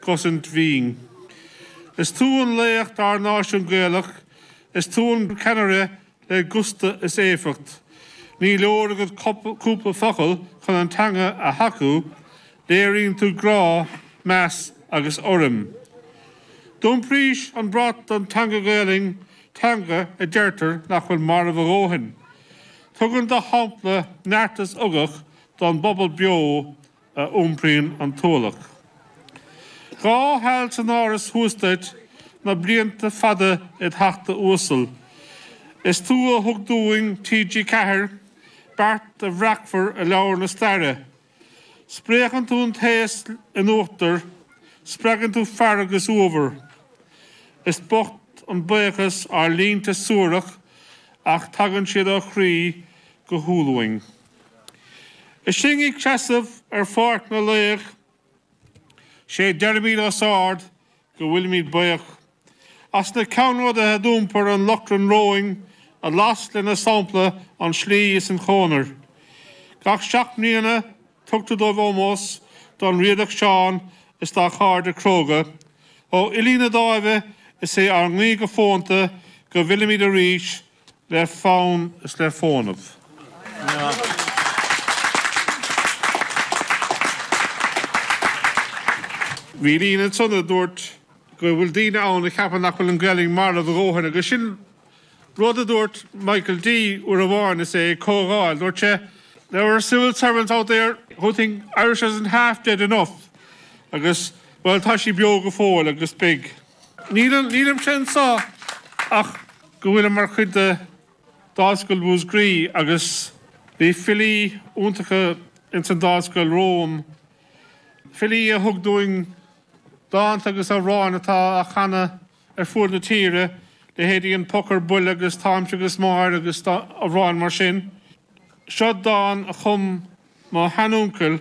gcosaint mhín. Is tú an laoch dár náisiún Gaelach, is tú an ceannaire le gusta is éifeacht. Ní leor agat cúpla focal chun an teanga a thacú, léiríonn tú grá, meas agus urraim. D'iompraís an brat don teanga Gaelainn, teanga a deirtear nach bhfuil marbh a dhóthain. Tugann do shampla neart is ugach don bpobal beo. a iompraíonn an t-ualach. Dhá sheal san Áras thuas duit, na blianta fada id theachta uasal. Is tú a thug dúinn TG Ceathair, beart a bhreacfar i leabhar na staire. Spréachann tú an t-aos in uachtar, spreagann tú fearg is uabhar. Is bocht an baochas ár línte suarach ach tagann siad ó chroí go humhal uainn. Is sinn ag seasamh ar Pháirc na Laoch sé deirimid os ard go bhfuilimid baoch as na ceannródaithe a d'iompair an lóchrann romhainn a las lena sampla an tslí is an chónair. Gach seacht mbliana tugtar dóibh ómós, don Riadach Seán is dá chairde cróga. Ó fhilí na Dáimhe is é ár nguí go fónta go bhfillimid arís le fonn is le fónamh. Bhí líne ansan a dúirt go bhfuil daoine ann a cheapann nach bhfuil an Ghaelainn marbh a dhóthain agus sin rud a dúirt Michael D uair amháin is é ag comhdháil, dúirt sé there are civil servants out there who think Irish isn't half dead enough agus bhuel tá sí beo go fóill agus beidh. Nílimse anseo ach go bhfuilim mar chuid de Dáimhscoil Mhúsgraí agus bhí filí iontacha ins an Dáimhscoil romham, filí a thug dúinn dánta agus amhráin atá á chanadh ar fuaid na tíre, leithéidí An Poc ar Buile agus Táimse agus Máire agus amhráin mar sin. Seo dán a chum mo shean-úncail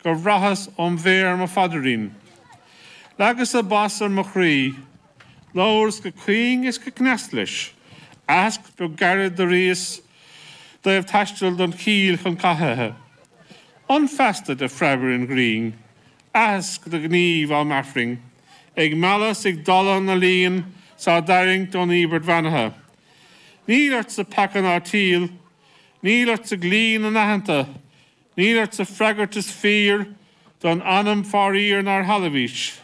Do chraitheas óm' mhéar mo phaidirín. Leagas-sa bas ar mo chroí. Labhras go caoin is go cneasta leis. Aitheasc beag gairid d'airíos i dtaobh taisteal don chill chun cathaithe. D'fhan feasta de phreab ar an ngrian. Aitheasc do ghníomh am' Aifrinn. Ag mealladh 's ag dalladh na líon 's á dtarraingt ón íobairt bheannaithe. Níl ortsa peaca ná teimheal. Níl ortsa dlí na n-aitheanta. Níl ortsa freagairt is fíor don ainm faraor nár shealbhaís.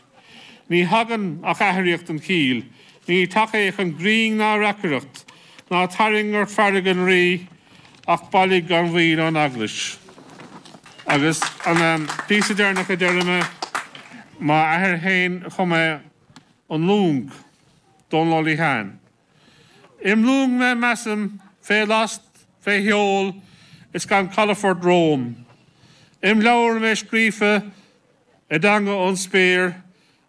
Ní thagann ach aithríocht an chill, ní tacaíocht an ghriain ná reacaireacht, ná tarraing ort fearg an rí ach bailigh gan mhoill ón eaglais. Agus an píosa deireanach a deir mé, m'athair fhéin a chum é An Long, Dónal Ó Liatháin. Im luing mé measaim fé last fé sheol is gan calafort romham, Im leabhar mé scríofa i dteanga ón spéir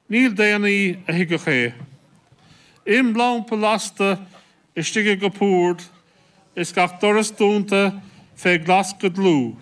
níl daonnaí a thuigfeadh é, Im lampa lasta istigh i gcupúrd is gach doras dúnta fé ghlas go dlúth,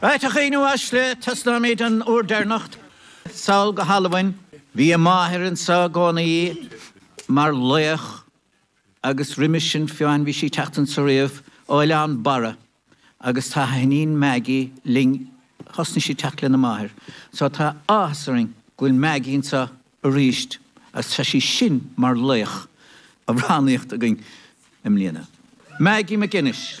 Fathach í Nuasc le taistealaímid don uair deireanach sall go hAlbain. Bhí a máthair anso i gcónaí mar laoch agus roimis sin féin bhí sí ag teacht anso riamh ó Oileán Barra agus tá a hiníon Maggie linn. Thosnaigh sí ag teacht lena máthair so tá áthas orainn go bhfuil Maggie anso. arís agus tá sí sin mar laoch amhránaíochta againn i mbliana. Maggie MacInnes.